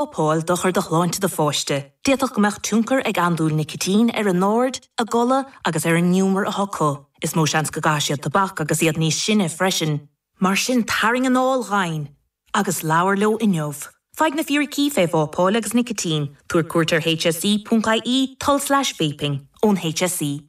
Vápáil dochar do shláinte do pháiste. D'fhéadfadh go mbeadh tionchar ag andúil nicitín ar a n-aird, a gcodladh agus ar an ngiúmar atá acu. Is mó seans go gcaithfidh siad tobac agus iad níos sine freisin. Mar sin tarraing anáil dhomhain agus labhair leo inniu. Faigh na fíricí fé vápáil agus nicitín, tabhair cuairt ar hse.ie, tulslais vaping, ón hse.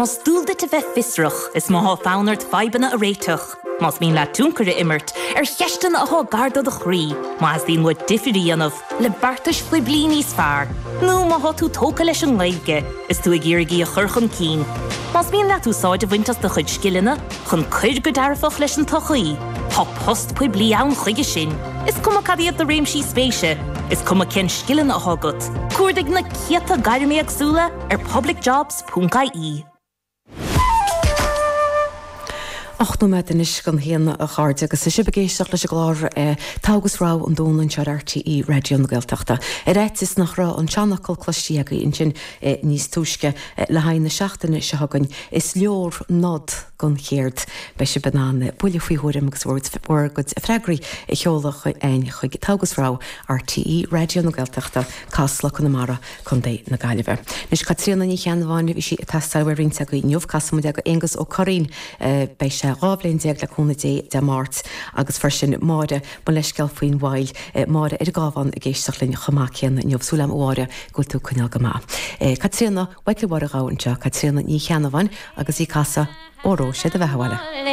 Más dual duit a bheith fiosrach, is má thá fonn ort fadhbanna a réiteach, más mian leat tionchar a imirt ar cheisteanna athá gar do do chroí, má theastaíonn uait difir a dhéanamh le beartais phoiblí níos fearr, nó má thá tú tógtha leis an nGaeilge is tú ag iarraidh í a chur chun cinn, más mian leat úsáid a bhaint as do chuid scileanna chun cur go dearfach leis an tsochaí, thá post poiblí ann chuige sin. Is cuma cad iad do réimsí spéise, is cuma cén scileanna athá agat, cuardaigh na céadta gairm éagsúla, ar publicjobs.ie. Ocht nóiméad anois don haon a chairde agus tá sibh ag éisteacht leis an gclár Togha agus Rogha an Domhnaigh anseo ar RTÉ Raidió na Gaeltachta. Ar fhaitíos nach raibh an seanfhocal cloistí agaibh ansin níos túisce le haghaidh na seachtaine seo chugainn, is leor nod don chéard. Beidh sibh in ann buille faoi thuairim agus bhur gcuid freagraí a sheoladh chuig Togha agus Rogha, RTÉ Raidió na Gaeltachta, Casla Conamara. Co. na Gaillimhe. Anois, Caitríona Ní Cheannabháin, bhí sí ag teastáil ó roinnt agaibh inniu. Casfaidh muid í do Aonghus Ó Curraoin. Beidh sé dhá bhliain déag le cúnamh Dé, Dé Máirt. Agus freisin Máire, mo leithscéal faoin mhoill. Máire ar an gCábhán ag éisteacht linn chomh maith céanna inniu. Súil agam a Mháire go bhfuil tú ag coinneáil go maith. Caitríona Mhichael Mháire Ghabha anseo, Caitríona Ní Cheannabháin agus í ag casadh Óró, sé do bheatha abhaile.